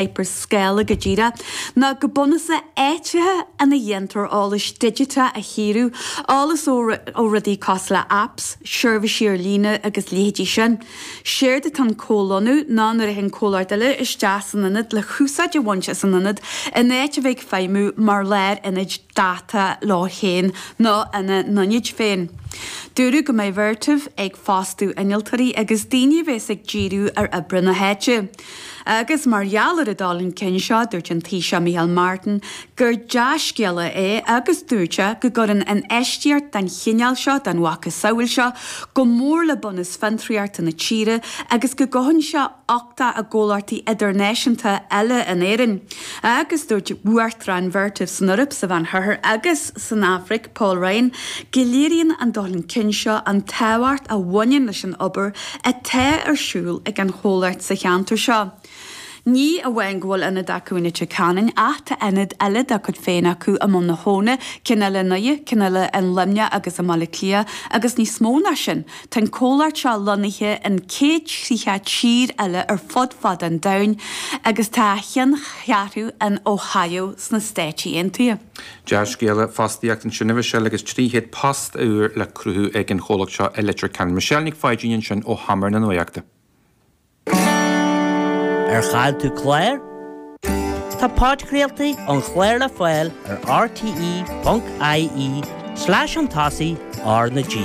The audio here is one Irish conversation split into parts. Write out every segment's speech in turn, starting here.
Hyperscale go díreach, ná go bunúsach áiteacha ina ndéantar eolais digiteach a chíoradh, eolas ó rudaí cosúil le apps, seirbhísí ar líne agus leithéidí sin. Séard atá in comhlonnú ná nuair a théann comhlachtaí eile isteach san ionad le húsáid a bhaint as an ionad in áit a bheith ag feidhmiú mar láir ionaid dáta leo féin nó ina n-ionaid féin. Dúradh go mbeidh Vertiv ag fostú innealtóirí agus daoine a bhéas ag díriú ar oibriú na háite. Agus mar gheall ar an dul chun cinn seo, dúirt an Taoiseach Micheál Martin gur dea-scéala é agus dúirt sé go gcuireann infheistíocht den chineál seo, den mhacasamhail seo, go mór le bunús fiontraíochta na tíre agus go gcothaíonn sé uchtach i gcomhlachtaí idirnáisiúnta eile in Éirinn. Agus dúirt Uachtarán Vertiv san Eoraip, sa Mheán-Oirthear agus san Afraic, Paul Ryan, go léiríonn an dul chun cinn seo an tábhacht a bhaineann leis an obair atá ar siúl ag an Chomhlacht sa cheantar seo. Ní amháin go bhfuil ionad acu i Leitir Ceanainn ach tá ionaid eile dá gcuid féin acu i mBun na hAbhann, ceann eile in Uidhir, ceann eile i Luimneach agus i mBaile Átha Cliath agus níos mó ná sin tá an Comhlacht seo lonnaithe in 100 30 tír eile ar fud fad an domhain agus tá a cheanncheathrú in Ohio sna Stáit Aontaithe. Dea-scéala, fostaíocht ansin a Mhichelle agus 300 post úr le cruthú ag an chomhlacht seo i Leitir Ceanainn. Michelle Nic Pháidín ansin ó sheomra na Nuaíochta. Ar chaill tú clár? Tá podchraoltaí ón chlár le fáil ar rte.ie slash an tSásaigh R na G.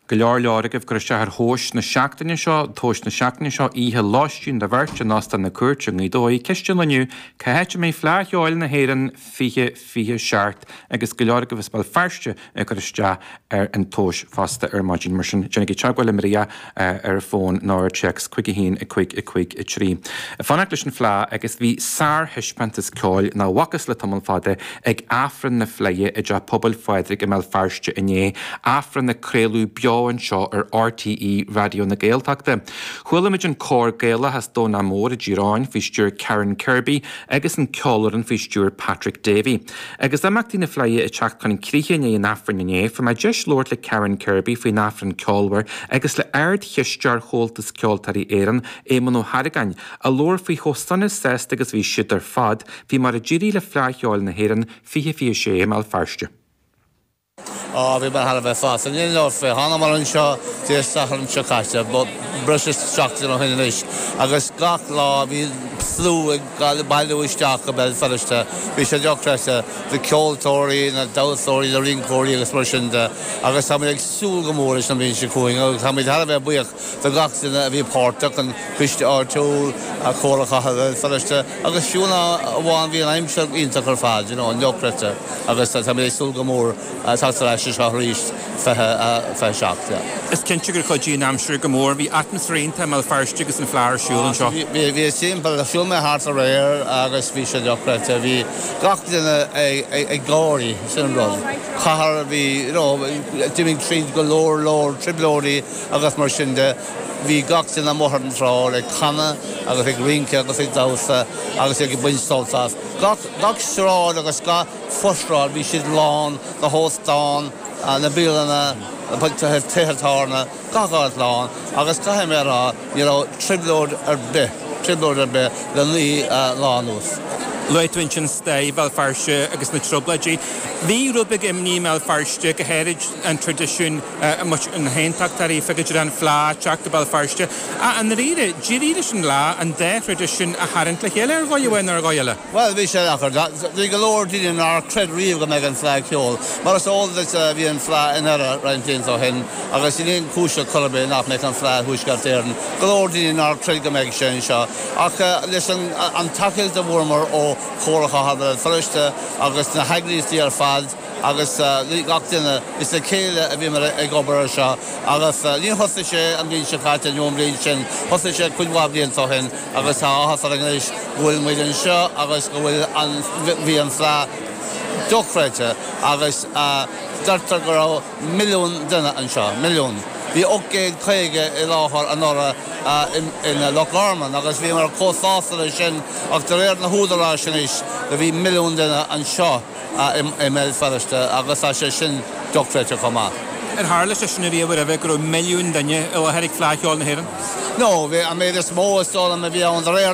Go leor leor agaibh ag cur isteach ar thomhais na seachtaine seo, tomhais na seachtaine seo, oíche lóistín do bheirt in Óstán na Cúirte i nGaoth Dobhair, Ceist an lae inniu, cá háit a mbeidh Fleadh Cheoil na hÉireann 2027 agus go leor agaibh as Béal Feirste ag cur isteach ar an tomhais fosta ar maidin. Mar sin, déanaigí teagmháil linn ar fón nó ar téacs chuig 1 553. Fanacht leis an Fleadh agus bhí sárthaispeántas ceoil nach bhfacthas le tamall fada Ag Aifreann na Fleidhe i dTeach Pobail Phádraig i mBéal Feirste inné, Aifreann a craoladh beo anseo ar RTÉ Raidió na Gaeltachta, chualamid an cór Gaelach as Domhnach Mór i dTír Eoghain faoi stiúir Karen Kirby agus an cheolfhoireann faoi stiúir Patrick Davey. Agus imeachtaí na Fleidhe ag teacht chun críche i ndiaidh an Aifrinn inné, fuair mé deis labhairt le Karen Kirby faoin Aifreann ceolmhar agus le Ard-Chisteoir Chomhaltas Ceoltóirí Éireann, Éamonn Ó hArgáin, a labhair faoi chomh sona sásta agus bhí siad ar fad. Faoi mar a d'éirigh le Fleadh Cheoil na hÉireann 2026 i mBéal Feirste. Á, bhí mé thar a bheith sásta. Níl aon dabht fé. Thánamar anseo Dé Sathairn seo caite, breis is seachtain ó shin anois, agus gach lá bhí an slua ag bailiú isteach go Béal Feirste. Bhí sé dochreidte, na ceoltóirí, na damhsóirí, na rinceoirí agus mar sin de, agus táimid ag súil go mór leis an bhliain seo chugainn, agus táimid thar a bheith buíoch do gach duine a bhí páirteach, an Coiste Áitiúil, Comhairle Chathair Bhéal Feirste agus fiú ná amháin, bhí an aimsir iontach ar fad, you know, dochreidte agus táimid ag súil go mór teacht ar ais anseo arís 2027, yeah. Is cinnte gur chuidigh an aimsir go mór, bhí atmaisféar iontach i mBéal Feirste agus an Fleadh ar siúl anseo. Bhí, bhí timpeall, shiúl mé thart aréir agus bhí sé dochreidte, bhí gach duine ag gáire, sin an rud. Cathair a bhí, you know, d'imigh tríd go leor leor trioblóidí, agus mar sin de. Bhí gach duine amuigh ar an tsráid ag canadh agus ag rince agus ag damhsa agus iad ag baint sult as. Gach, gach sráid agus gach fo-shráid bhí siad lán, na hóstáin, na bialanna, tithe tábhairne, gach áit lán agus caithfidh mé a rá ní raibh trioblóid ar bith, trioblóid ar bith le naoi lá anuas. Luaigh tú ansin stair Bhéal Feirste agus na Trioblóidí. Bhí rud beag imní i mBéal Feirste go háirithe, an traidisiún, measc na nAontachtóirí faoi go dtí an Fleadh teacht go Béal Feirste. Ach i ndáiríre, d'éirigh leis an Fhleadh an dá thraidisiún a tharraingt le chéile, ar dhóigh amháin nó ar dhóigh eile. Bhuel, bhí sé deacair. Bhí go leor daoine nár chreid riamh go mbeadh an Fleadh Cheoil. Mar is eol duit, bhí an Fleadh i nDoire roinnt blianta ó shin agus níl aon chúis le cur ar bith nach mbeadh an Fleadh i dTuaisceart Éireann. Go leor daoine nár chreid go mbeadh sé anseo. Ach leis an tacaíocht a fuaireamar ó Chomhairle Chathair Bhéal Feirste agus na heagraíochtaí ar fad, agus le gach duine. Is le chéile a bhíomar ag obair ar seo agus níor thosaigh sé an bhliain seo caite nó an bhliain sin, thosaigh sé cuid mhaith blianta ó shin agus tá áthas orainn anois go bhfuilimid anseo agus go bhfuil an, bhí an Fleadh dochreidte agus deirtear go raibh milliún duine anseo, milliún. Bhí ocht gcéad caoga i láthair anuraidh i Loch Garman agus bhíomar chomh sásta le sin ach de réir na húdaráis anois do bhí milliún duine anseo. i mBéal Feirste agus tá sé sin dochreidte chomh maith. Ar tharla sé sin riamh roimhe go raibh milliún duine i láthair ag Fleadh Cheoil na hÉireann? No, bhí an méid is mó is dóigh liom a bhí ann de réir